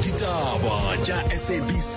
ditaba tša sabc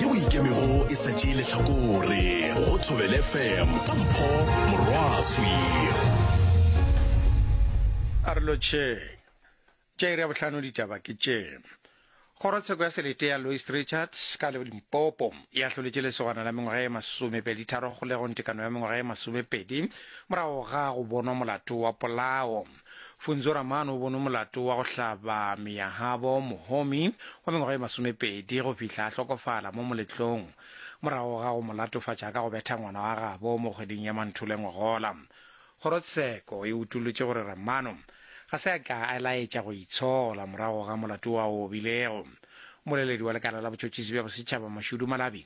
yeo ikemego e sa tšee letlhakore go thobele fm ka mpho morwaswi a re lotšheng tša iri ya bohlano ditaba ke tše kgorotsheko ya selete ya louis richards ka le limpopo e ahloletše lesogana la mengwaga e masomepedi tharo kgolegong tekano ya mengwaga e masomepedi morago ga go bonwa molato wa polao Funzo Ramano o bono molato wa go hlaba Miyahabo Mohomi wa mengwaga e masomepedi go fihla a hlokofala mo moletlong morago ga go mo latofatša ka go betha ngwana wa gabo mo kgweding ya Manthule ngogola. Kgorotsheko e utolotše gore Ramano ga se a ka a laetša go itshola morago ga molato wa o obilego. Mmoleledi wa lekala la botšhotšhisi bja bosetšhaba Mashudu Malabi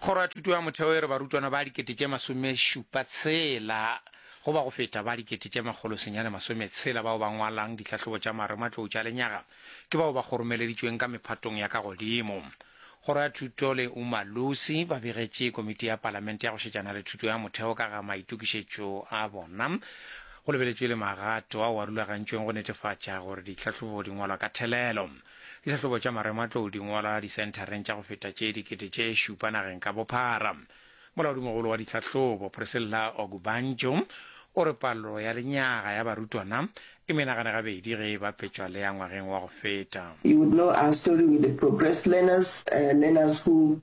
Kgoro ya Thuto ya Motheo e re barutwana ba dikete tše masomešupa tshela go ba go feta ba dikete tše makgolo senyane masome tshela bao ba ngwalang ditlhahlobo tša marematlou tša lenyaga ke bao ba kgoromeleditšweng ka mephatong ya ka godimo. Kgoro ya Thuto le Umalusi ba begetše Komiti ya Palamente ya go šetšana le Thuto ya Motheo ka ga maitokišetšo a bona. Go lebeletšwe le magato ao a rulagantšweng go netefatša gore ditlhahlobo di ngwalwa ka thelelo. Dihlahlobo tša marematlou di ngwala disenthareng tša go feta tše dikete tše šupa nageng ka bophara. Molaodimogolo wa ditlhahlobo, Priscilla Ogubanjo, o re palo ya lenyaga ya barutwana e menagane gabedi ge e bapetšwa le ya ngwageng wa go feta. You would know our story with the progressed learners, learners who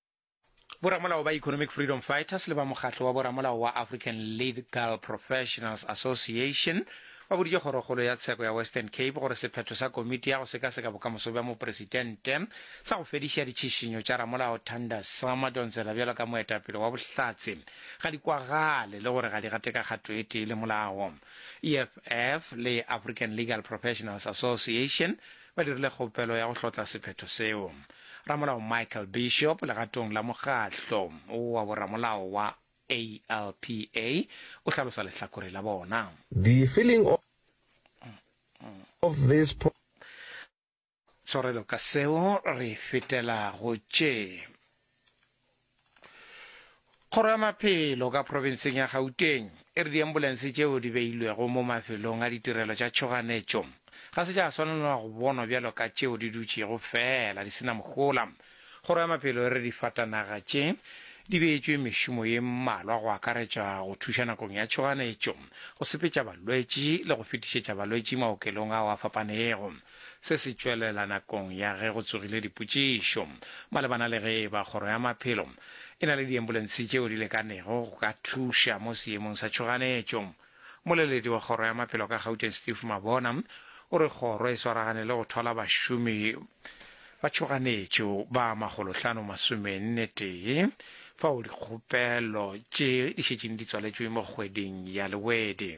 Boramolao ba Economic Freedom Fighters le ba mokgatlo wa boramolao wa African Legal Professionals Association ba boditše kgorokgolo ya tsheko ya Western Cape gore sephetho sa komiti ya go sekaseka bokamoso bja mopresidente sa go fediša ditšhišinyo tša ramolao Thanda Sama Donzela bjalo ka moetapele wa bohlatse ga di kwagale le gore ga di gate ka kgato e tee le molao. EFF le African Legal Professionals Association ba dirile kgopelo ya go hlotla sephetho seo. Ramolao Michael Bishop, legatong la mokgatlo wa boramolao wa ALPA, o hlalosa lehlakore la bona. The feeling of this poor. Tshwarelo ka seo re fetela go tše. Kgoro ya Maphelo ka profenseng ya Gauteng e re diambulense tšeo di beilwego mo mafelong a ditirelo tša tšhoganetšo ga se tša swanelwa go bonwa bjalo ka tšeo di dutšego feela di sena mohola. Kgoro ya Maphelo e re difatanaga tše di beetšwe mešomo ye mmalwa go akaretša go thuša nakong ya tšhoganetšo, go sepetša balwetši le go fetišetša balwetši maokelong ao a fapanego. Se se tšwelela nakong ya ge go tsogile dipotšišo malebana le ge eba Kgoro ya Maphelo e na le diembulense tšeo di lekanego go ka thuša mo seemong sa tšhoganetšo. Moleledi wa Kgoro ya Maphelo ka Gauteng Steve Mabona o re kgoro e swaragane le go thola bašomi ba tšhoganetšo ba makgolohlano masomenne tee fao dikgopelo tše di šetšeng di tswaletšwe mo kgweding ya Lewedi.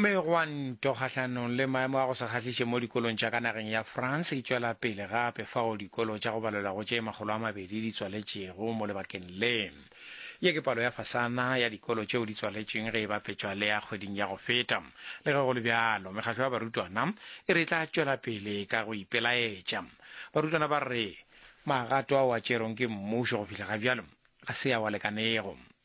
Megwanto kgahlanong le maemo a go se kgahliše mo dikolong tša ka nageng ya France e tšwela pele gape fao dikolo tša go balelwa go tše makgolo a mabedi di tswaletšego mo lebakeng le. Ye ke palo ya fasana ya dikolo tšeo di tswaletšweng ge e bapetšwa le ya kgweding ya go feta. Le ge go le bjalo, mekgahlo ya barutwana e re e tla tšwela pele ka go ipelaetša. Barutwana ba re magato ao a tšerweng ke mmušo go fihla ga bjalo ga se ao a lekanego.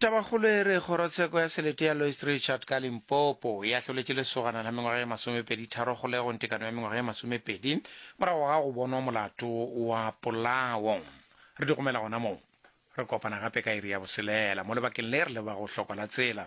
Tabakgolo e re kgorotsheko ya selete ya Lois Richard ka Limpopo e ahloletše lesogana la mengwaga ye masomepedi tharo kgolegong tekano ya mengwaga ye masomepedi morago ga go bonwa molato wa polao. Re di gomela gona moo. Re kopana gape ka iri ya boselela mo lebakeng le re le ba go hlokwa la tsela.